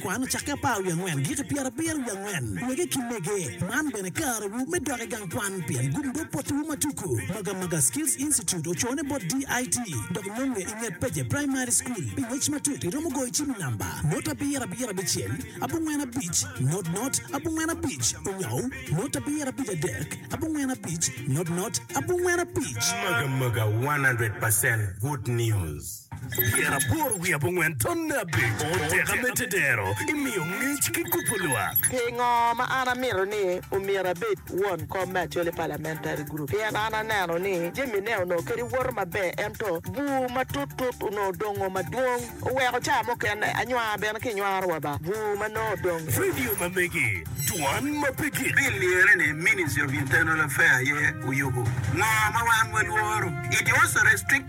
Kwan ocakke apar wiye angwen giki pyerabiro wiye angwen wege ki mege. Man bene karewu me dok i gang kwan pien gumdo potiwu ma tuku. Maga Maga Skills Institute ocone bot DIT dok nonge i nget Peje Primary School. Pi ngec matut iromo goyo cim i namba not abiro abiro abicel abongwen abic not not abongwen abic onyou not abiro abic adek abongwen abic not not abongwen abic. Maga Maga 100 percent good news. Tyen aboro wiye abongwen tonne abic. Oteka me tedero imiyo ngec ki kubo lwak. Pingo ma an amito ni omyero abed won kom me Acholi Parliamentary Group? Pien an aneno ni jamine onongo kadi woto maber ento bur matut tut onongo dongo madwong oweko ca mukene anywar bene kinywaro wa ba bur ma nongo odong. Vidio ma megi, Dwan ma pe gik. Pi lyere ni Ministry of Internal Affair aye oyubo ngo ma wan walworo? It was restricted.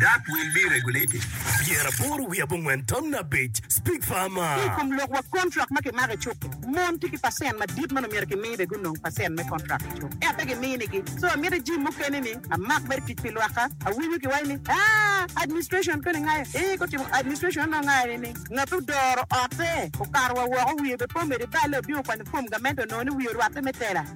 That will be regulated. Pyera aboro wiye abongwen tamna abic, Speak farmer. Ki i kom lok wa kontrak ma kimako i cuk-ki, mon tye ki pacent madit ma omyero kimi be gunong pacent me kontrak i cuk, ento pe giminigi. So amiti jim mukene ni amak mere tic pi lwakka. Awinyo kiwaci ni, Aa, administration koni ngayo? Ee, gutimo administration onongo ngayo ni ni ngat ma odoro otte okato wa woko wiye be pe omede balle obino kwanyo fom gamente onongo ni wiye orwatte me tela.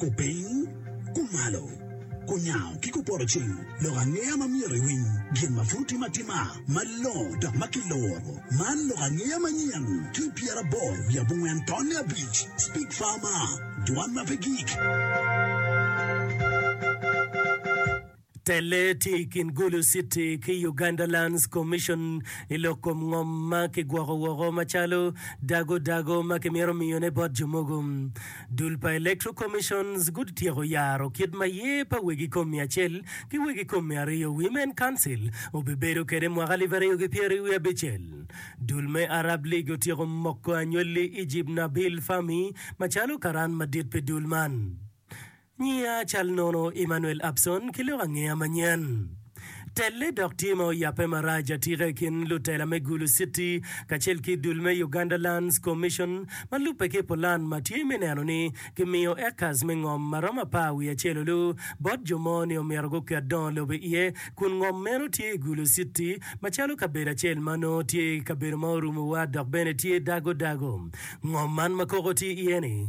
Kupiny, kumalo, kunyango ki kupoto cing, lok angeya ma myero iwiny, gin ma pud otim atima, malongo dok ma kiluro. Man lok angeya manyen ki i pyeraboro wiye abongwen tonne abic, Speak Farmer, Dwan ma pe gik. Telle tye i kin Gulu City ki Uganda Lands Commission i lok kom ngom ma kigwoko woko macalo dago dago ma kimito miyone bot jo mogo. Dul pa Electoral Commissions gutyeko yaro kit ma yer pa wegi kom mia acel ki wegi kom mia aryo, Women Council, obibedo kwede mwaka alip aryo ki pyeri wiye abicel. Dul me Arab League otyeko moko anywali Egypt Nabil Fahmy macalo karan madit pi dul man. Nyiya cal nono Emmanuel Abson ki lok angeya manyen. Telle dok tye ma oyabbe marac atika i kin lutela me Gulu City kacel ki dul me Uganda Lands Commission ma lubbe ki pulan ma tye me neno ni kimiyo acres me ngom ma romo apar wiye acel olu bot jo mo ni omyero guket dongo lobo iye kun ngom meno tye i Gulu City macalo kabedo acel ma nongo tye kabedo ma orumo wa dok bene tye dago dago. Ngom man ma koko tye iye ni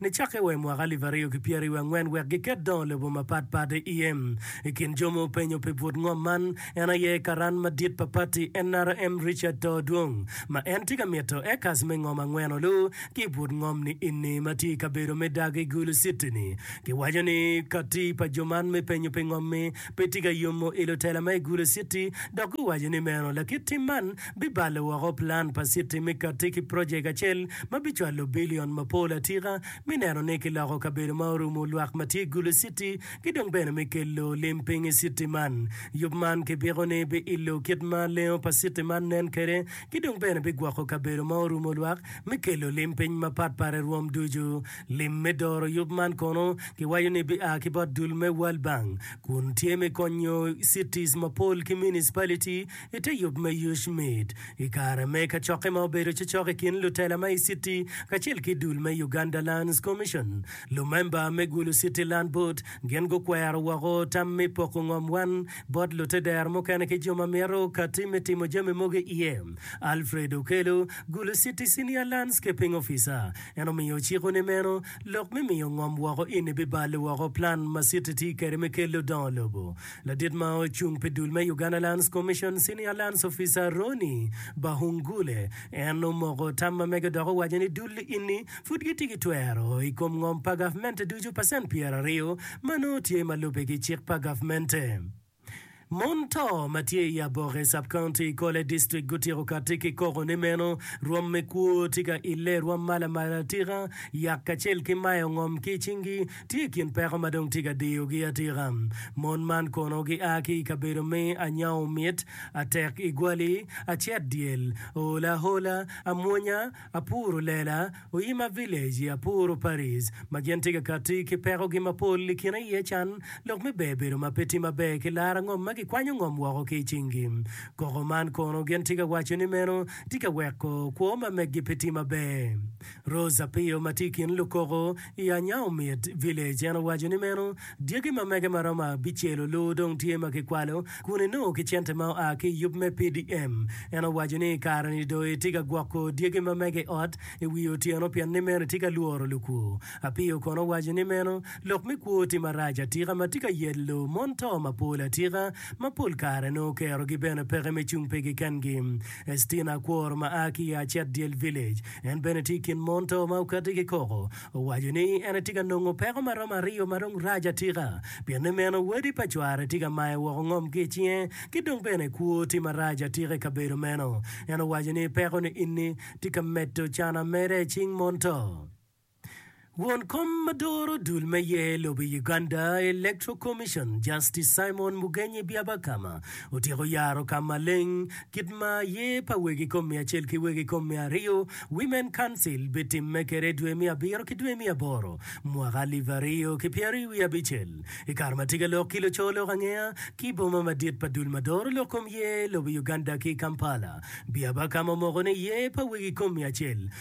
Nicakke wa i mwaka alip aryo ki pyeraryo angwen wek giket dongo lobo mapat pat iye. I kin jo ma openyo pi but ngom man, en aye karan madit pa pati NRM Richard Too Dwong ma en tye ka mito acres me ngom angwen olu ki i but ngom ni inni ma tye i kabedo me Dagi Gulu City ni. Giwaco ni kati pa jo man me penyo pi ngom-mi pe tye ka yomo i lutela ma i Gulu City dok guwaco ni meno lakit tim man bibalo woko plan pa citi me katti ki projek acel ma bicwalo bilion mapol atika me neno ni kiloko kabedo ma orumu lwak ma tye gulu citi ki dong bene me kelo lim piny i citi man. Yub man ki biko ni bi ilo kit ma lengo pa citi man nen kede ki dong bene bi gwoko kabedo ma orumu lwak me kelo lim piny ma pat pat i rwom ducu. Lim me doro yub man kono ki waco ni bi a ki bot dul me World Bank kun tye me konyo cities mapol ki municipality I te yub me Yucmid, i kare me kacokke ma obedo cocok i kin lutela ma i Citi kacel ki dul me Uganda Lands Commission, lumemba me Gulu Citi Land Board gin gukwero woko tam me poko ngom wan bot lute dero mukene ki jo ma mito kati me timo jami mogo i iye. Alfred Okello, Gulu Citi Senior Landscaping Officer, en omiyo ociko ni meno lok me miyo ngom woko eni bibalo woko plan ma Citi tye kwede me kelo dongo lobo Ladit ma ocung pi dul me Uganda Lands Commission Senior Lands Officer Ronnie Bahungule en omoko tam ma mege dok owaco ni dul ini pud gitye ki twero i kom ngom pa gavmente ducu pacent pyeraryo ma nongo tye ma lubbe ki cik pa gavmente. Mon to ma tye i Aboke Sub County i Kole District gutyeko katti ki koko ni meno rwom me kwo tye ka ile rwom ma lamalatika yak kacel ki mayo ngom ki i cingi tye i kin peko ma dong tye ka diyogi atika. Mon man kono gia ki i kabedo me anyango mit, atek igwali, acet dyel, ool ahola, amwonya, apuro lela, oyima village, apuro Paris, ma gin tye ka katti ki pekogi mapol i kin aye can, lok me ber bedo ma pe tye maber ki laro ngom ma gikwanyo ngom woko ki i cingi. Koko man kono gin tye ka waco ni meno tye ka weko kwo ma meggi pe tye maber. Rose Apio ma tye i kin lukoko i Anyao Myt Village en owaco ni meno dyegi ma mege ma romo abicel olur dong tye ma kikwalo kun enongo ki cente ma oa ki i yub me PDM. En owaco ni i kare-ni dong etye ka gwoko dyegi ma mege i ot i wi otyeno pien ni meno etye ka lworo lukwo. Apio kono owaco ni meno lok me kwo tye marac atika ma tye ka yelo mon to mapol atika ma pol kare nongo kerogi bene peke me cung pigi kengi. Estina Akwor ma a ki i Acet Dyel Village, En bene tye i kin mon to ma okatte ki koko. Owaco ni en etye ka nongo peko ma romo aryo ma dong rac atika. Pien ni meno, wadi pa cware tye ka maye woko ngom ki i cinge, ki dong bene kwo tye marac atika i kabedo meno. En owaco ni peko niini tye ka medo can ameda i cing mon to. Won kom ma doro dul me yer lobo i Uganda, Electoral Commission, Justice Simon Mugenyi Byabakama otyeko yaro ka maleng kit ma yer pa wegi kom miya acel ki wegi kom miya aryo, Women Council, bitimme kede i dwe miya abiro ki dwe miya aboro mwaka alip aryo ki pyeraryo wiye abicel i kare ma tye ka lok ki luco lok angeya ki boma madit pa dul ma doro lok kom yer lobo i Uganda ki i Kampala. Byabakama omoko ni yer pa wegi kom miya acel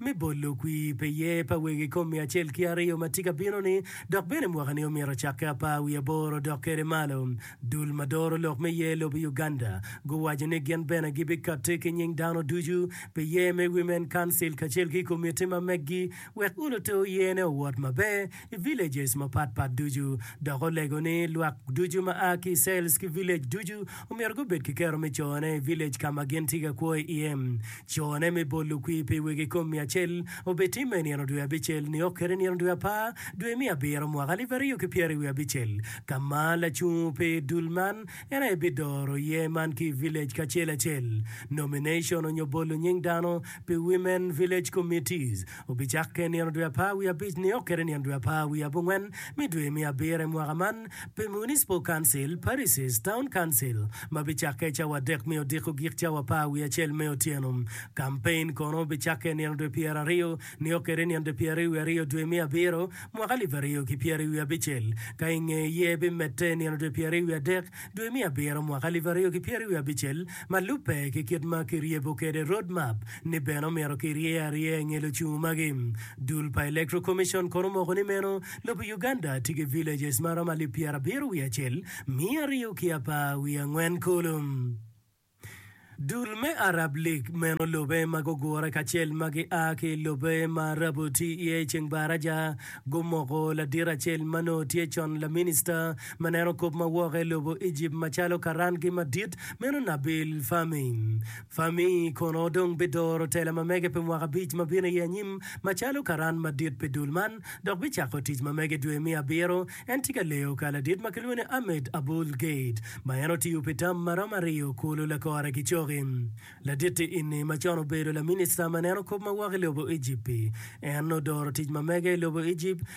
me bolo kwi pe ye pa wegi i kom miya acel ki aryo ma tye ka bino-ni, dok bene mwaka-ni omyero ocakke apar wiye aboro odok kwede malo. Dul ma doro lok me yer lobo i Uganda guwaco ni gin bene gibikatti ki nying dano ducu pi yer me Women Council kacel ki komiti ma meggi wek olote oyerne owot maber i villages mapat pat ducu, dok olego ni lwak ducu ma a ki i cells ki village ducu omyero gubed ki kero me cone i village ka ma gin tye ka kwo iye. Cone me bolo kwir pi wegi kom miya cel obetimme i nino dwe abicel nio kede nino dwe apar dwe me abiro mwaka alip aryo ki pyera i wiye abicel ka ma lacung pi dul man en aye bidoro iye man ki i village kacel acel. Nomination onyo bolo nying dano pi women village committees Obicakke i nino dwe apar wiye abic nio kede nino dwe apar wiye abongwen me dwe me abiro i mwaka man pi Municipal Council, Parishes, Town Council, ma bicakke i cawa adek me odiko gik cawa apar wiye acel me otyeno. Kampein kono obicakke i nino dwe pyeraryo nio kede nino dwe pyeraryo wiye aryo dwe me abiro mwaka alip aryo ki pyeraryo wiye abicel, ka i nge ye bimedde i nino dwe pyeraryo wiye adek dwe me abiro mwaka alip aryo ki pyeraryo wiye abicel ma lubbe ki kit ma kiryebo kede Road Map. ni bene omito ki rye arye nge lucungu magi. Dul pa Electoral Commission kono omoko ni meno lobo Uganda tye ki villages ma romo alip pyera abiro wiye acel miya aryo ki apar wiye angwen kulu. Dul me Arab League meno lobe ma gugure kacel ma gi a ki lobe ma Arabu tye iye i ceng Baraja gumoko ladit acel ma nongo tye con laminista ma neno kop ma woke lobo Egypt macalo karan gi madit meno Nabil Fahmy Fami kono dong bidoro tela ma mege pi mwaka abic ma bino iye anyim macalo karan madit pi dul man, dok bicako tic ma mege dwe me abiro. En tye ka leyo ka ladit ma kilwongo ni Ahmed Abul Gheit, ma en otiyo pi tam ma romo aryo kulu lakore ki coki. Laditti ini ma con obedo laminista ma neno kop ma woko i lobo Ejipt-ti, en odoro tic ma mege i lobo Ejipt,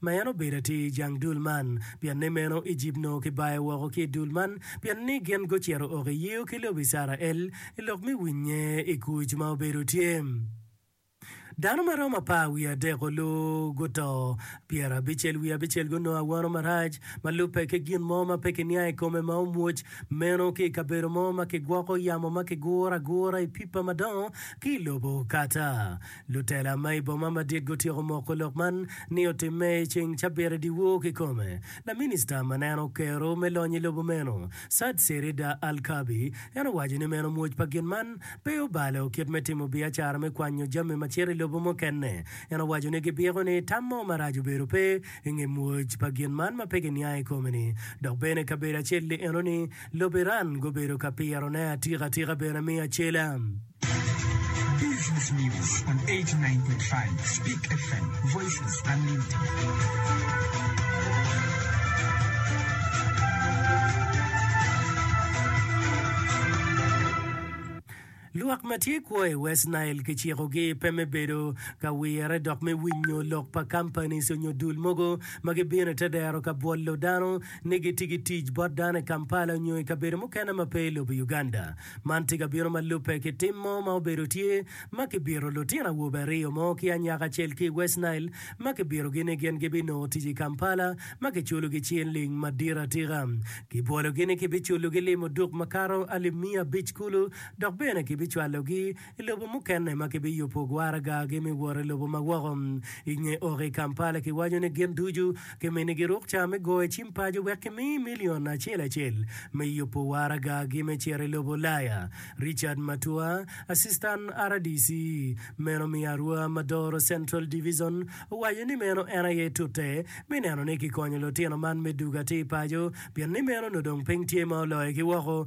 ma en obedo atir i jang dul man, pien ni meno Ejipt onongo kibayo woko ki i dul man, pien ni gin gucito oko i yio ki lobo Icrael i lok me winye i kuc ma obedo tye. Dano ma romo apar wiye adek-ku guto, pyerabicel wiye abicel gunongo awono marac, ma lubbe ki gin mo ma pe kiniang i kome ma omwoc meno ki i kabedo mo ma kigwoko yamo ma kiguro agura i pipa madongo ki i lobo kata Lutela ma i boma madit gutyeko moko lok man ni otimme i ceng cabit i dyewor kikome. Laminista ma nen okero me lony i lobo meno, Saad Serida Al-Kaabi, en owaco ni meno mwoc pa gin man pe obalo kit me timo biacara me kwanyo jami ma cito i lobo mukene. En owaco ni gibyeko ni tam mo marac obedo pe i nge mwoc pa gin man ma pe giniang i kome-ni. Dok bene kabedo acel-li enoni lobo Iran gubedo ka pirone atika atika bene me acela. Lwak ma tye kwo i West Nile kicikogi pe me bedo ka wire dok me winyo lok pa kampanis onyo dul mogo ma gibino i te dero ka bwolo dano ni gitye ki tic bot dano i Kampala onyo i kabedo mukene ma pe i lobo Uganda. Man tye ka bino ma lubbe ki tim mo ma obedo tye ma kibiro lutino awobe aryo mo ki anyaka acel ki i West Nile ma kibirogi ni gin gibinongo tic i Kampala ma kiculogi cinling madit atika. Kibwologi ni kibiculogi lim oduk makato alip miya abic kulu dok bene kibicwalogi I lobo mukene ma kibiyubo gwaragagi me wot i lobo ma woko i nge oko i Kampala, kiwaco ni gin ducu kimini giruk ca me goyo cim paco wek kimi milion acel acel me yubo waragagi me cito i lobo Ulaya. Richard Matua, Asistan rdc meno me Arua ma Doro Central Divizon, owaco ni meno en aye tute me neno ni kikonyo lutino man me dugo atir paco pien ni meno onongo dong piny tye ma oloyogi woko.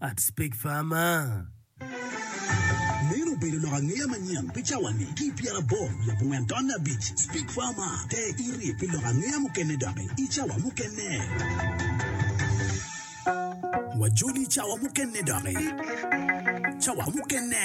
I'd speak farmer. Meno obedo lok angeya manyen pi cawani ki i pyeraboro wiye abongwen taun abic. Speak Farmer, te iri pi lok angeya mukene doki i cawa mukene. Wajoli i cawa mukene doki. Cawa mukene.